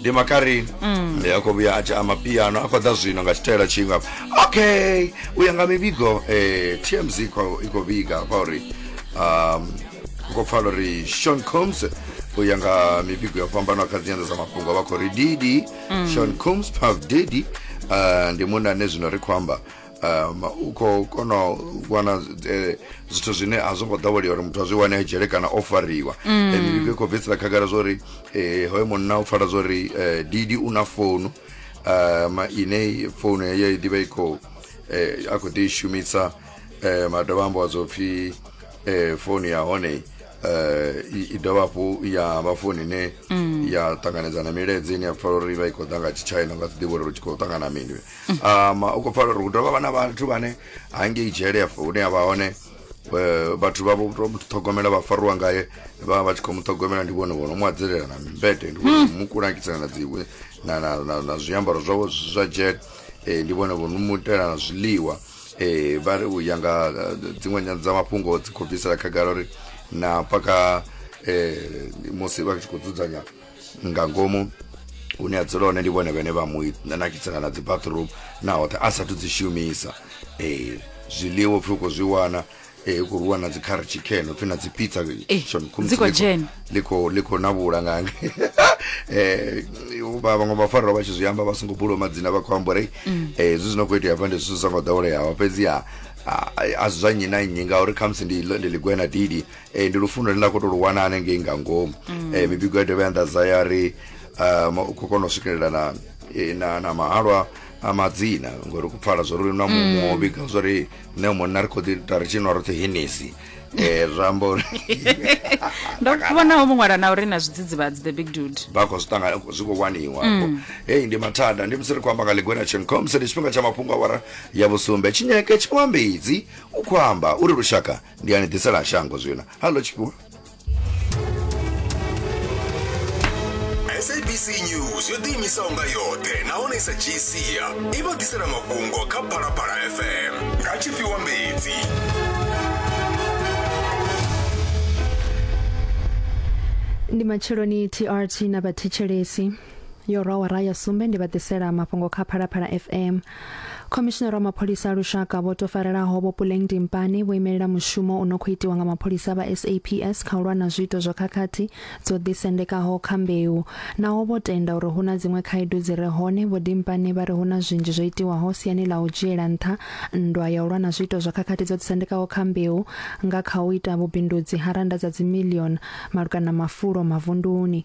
ndi makarini ndi a khou vhuya a tshi ama piano a khou ḓa zwino nga tshitaela tshinga okay u ya nga mivhigo eh, tmz i khou i khou vhiga kwa uri um, u khou pfala uri sean combs u ya nga mivhigo yo fhambanaho kha dzinyanḓa dza mafhungo vha khou ri didi sean combs puff didi uh, ndi munna ane zwino ri khou amba um u khou kona u wana eh, zwithu zwine a zwo ngo ḓowelea uri muthu a zwi wane a dzhele kana o fariwa mm. eh, mivhigo i khou bvisela khagala zwa uri eh, hoyo munna u pfala zwa uri didi u na founu um ine founu heyo i ḓivha i khou a khou ḓi i shumisa um a dovha ambiwa zwo pfhi um founu ya hone um i dovha hafhu ya vha founu ine mm. ya ṱanganedza na milaedza ine ya pfala uri i vha i khou ḓa nga tshitshaina nga si ḓivha uri ri tshi khou ṱangana mini um u khou pfala uri hu dovha vha na vhathu vhane hangei dzhele afho hune a vha hone eh, vhathu vha vho to mu ṱhogomela vha faruwa ngaye vha vha tshi khou mu ṱhogomela ndi vhone vhono mu adzelela na mimbete ndi vhone mu kulangisa na dzi na na na, na zwiambaro zwawe zwi zwa jet eh, ndi vhone vhono mu itela na zwiḽiwa eh vha ri u ya nga eh, dziṅwe nyana dza mafhungo dzi khou bvisela khagala uri na paka eh musi vha tshi khou dzudzanya nga ngomu hune a dzula hone ndi vhone vhene vha mu nakisela na dzi bathroom na hoṱhe a sathu dzi shumisa ee zwiḽiwa upfhi u khou zwi wana ee u khou rwiwa na dzi kha chicken upfhi na dzi pizza Eh, Sean Combs dzi khou ḽi khou- dzhena. ḽi khou- ḽi khou na vhula ngange Eh, vha- vhaṅwe vhafarelwa vha tshi zwi amba vha songo bulwa madzina vha khou amba uri Mm. eh, zwi zwino khou itea hafha ndi zwithu zwi songo ḓoweleaho fhedziha a- a zwi zwa nnyi na nnyi ngauri khamusi ndi ḽo- ndi ḽigwena didi Eh, ndi lufuno lune nda khou tou lu wana hanengei nga ngomu mm. eh, mibigo ya dovha ya nḓadza ya ri um, u khou kona u swikelela na, eh, na, na mahalwa a madzina ngori ku pfala zwo ri na muṅwe mm. o vhiga zwo ri nṋe munna ri khou ḓi ta ri tshinwa roṱhe henesi eh zwi amba uri ndo vhona ho muṅwala na uri na zwidzidzivhadzi the big dude vha khou zwi ṱangana zwi khou waniwa mm. heyi ndi mathada ndi musi ri khou amba nga ligwena chencom se ndi tshifhinga tsha mafhungo awara ya vhusumbe tshinyeke tshiwambedzi u khou amba uri lushaka ndi ani ḓisela shango zwino hallo tshifhiwa sabc news yo ḓiimisaho nga yoṱhe nahone i sa dzhii sia i vha ḓisela mafhungo kha phalaphala fm nga tshifhiwa mbedzi ndi matsheloni trt na vhathetshelesi yo rwa wara ya sumbe ndi vha ḓisela mafhungo kha phalaphala fm Khomishinara wa mapholisa a lushaka vho to farelaho vho Puleng Dimpane vho imelela mushumo u no khou itiwa nga mapholisa vha SAPS kha u lwa na zwiito zwa khakhathi dzo ḓisendekaho kha mbeu. Naho vho tenda uri hu na dziṅwe khaedu dzi re hone, Vho Dimpane vha ri hu na zwinzhi zwo itiwaho siani ḽa u dzhiela nṱha nndwa ya u lwa na zwiito zwa khakhathi dzo ḓisendekaho kha mbeu nga kha u ita vhubindudzi ha rannda dza dzimilioni malugana na mafulo mavunduni.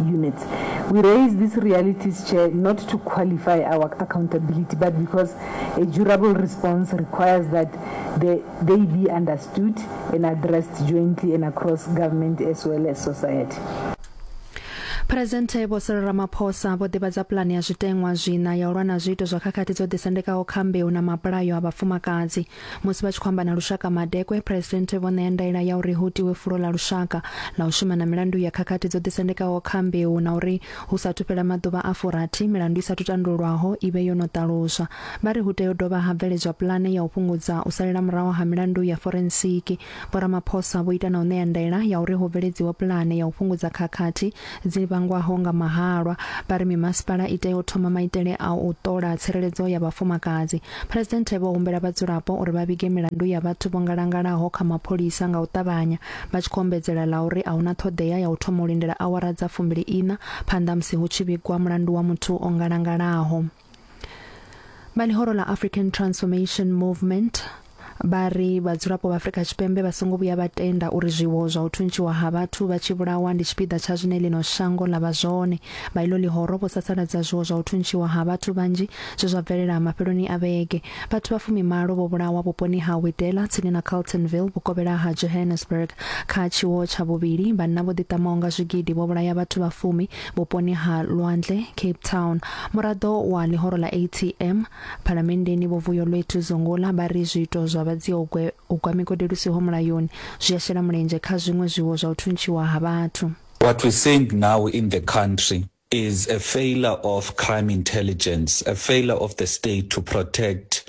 units. We raise these realities, Chair, not to qualify our accountability, but because a durable response requires that they, they be understood and addressed jointly and across government as well as society. Presidente Vho Cyril Ramaphosa vho ḓivhadza pulane ya zwiteṅwa zwina ya u lwa na zwiito zwa khakhathi dzo ḓisendekaho kha mbeu na mabulayo a vhafumakadzi. Musi vha tshi khou amba na lushaka madekwe, Phresidennde vho ṋea ndaela ya uri hu tiwe fulo ḽa lushaka ḽa u shuma na milandu ya khakhathi dzo ḓisendekaho kha mbeu na uri hu sa athu fhela maḓuvha a furathi milandu i sa athu tandululwaho i vhe yo no ṱaluswa. Vha ri hu tea u dovha ha bveledzwa pulane ya u fhungudza u salela muraho ha milandu ya forensiki. Vho Ramaphosa vho ita na u ṋea ndaela ya uri hu bveledziwe pulane ya u fhungudza khakhathi dzi vhangwaho nga mahalwa, vha ri mimasipala i tea u thoma maitele a u ṱola tsireledzo ya vhafumakadzi. Phresidennde vho humbela vhadzulapo uri vha vhige milandu ya vhathu vho ngalangalaho kha mapholisa nga u ṱavhanya, vha tshi khou ombedzela ḽa uri a hu na ṱhoḓea ya u thoma u lindela awara dza fumbili-iṋa phanḓa musi hu tshi vhigwa mulandu wa muthu o ngalangalaho. vha ḽihoro ḽa african transformation movement vha ri vhadzulapo vha afrika tshipembe vha songo vhuya vha tenda uri zwiwo zwa u thuntshiwa ha vhathu vha tshi vhulawa ndi tshipiḓa tsha zwine ḽino shango ḽa vha zwone vha ilo ḽihoro vho sasaladza zwiwo zwa u thuntshiwa ha vhathu vhanzhi zwe zwa bvelela mafheloni a vhege vhathu vha fumimalo vho vhulawa vhuponi ha widela tsini na carltonville vhukovhela ha johannesburg kha tshiwo tsha vhuvhili vhanna vho ḓiṱamaho nga zwigidi vho vhulaya vhathu vha fumi Vhuponi ha Lwandle, Cape Town, muraḓo wa ḽihoro ḽa ATM phalamenndeni Vho Vuyolwethu Zungula vha ri zwiito zwa vha dziogwe u gwa migodi lu siho mulayoni zwi a shela mulenzhe kha zwiṅwe zwiwo zwa u thuntshiwa ha vhathu. What we're seeing now in the country is a failure of crime intelligence, a failure of the state to protect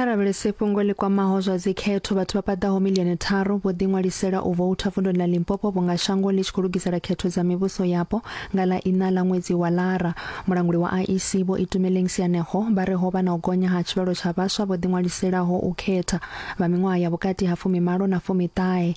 kha lavhelese fhungo ḽi kwamaho zwa dzikhetho vhathu vha paḓaho milioni tharu vho ḓiṅwalisela u voutha vundoni ḽa limpopo vhunga shango ḽi tshi khou lugisela khetho dza mivhuso yapo nga ḽa ina ḽa ṅwedzi wa lara mulanguli wa iec vho itumeleng sianeho vha re ho vha na u gonya ha tshivhalo tsha vhaswa vho ḓiṅwaliselaho u khetha vha miṅwaha ya vhukati ha fumimalo na fumiṱahe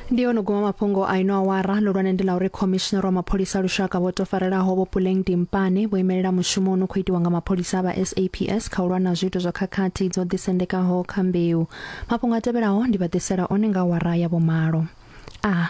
ndi yono guma mafhungo a ino awara lulwane ndi ḽa uri khomishinara wa mapholisa a lushaka vho to farelaho vho puleng dimpane vho imelela mushumo no khou itiwa nga mapholisa a vha saps kha u lwa na zwiito zwa khakhathi dzo ḓisendekaho kha mbeu mafhungo a tevhelaho ndi vha ḓisela one nga awara ya vhomalo a ah.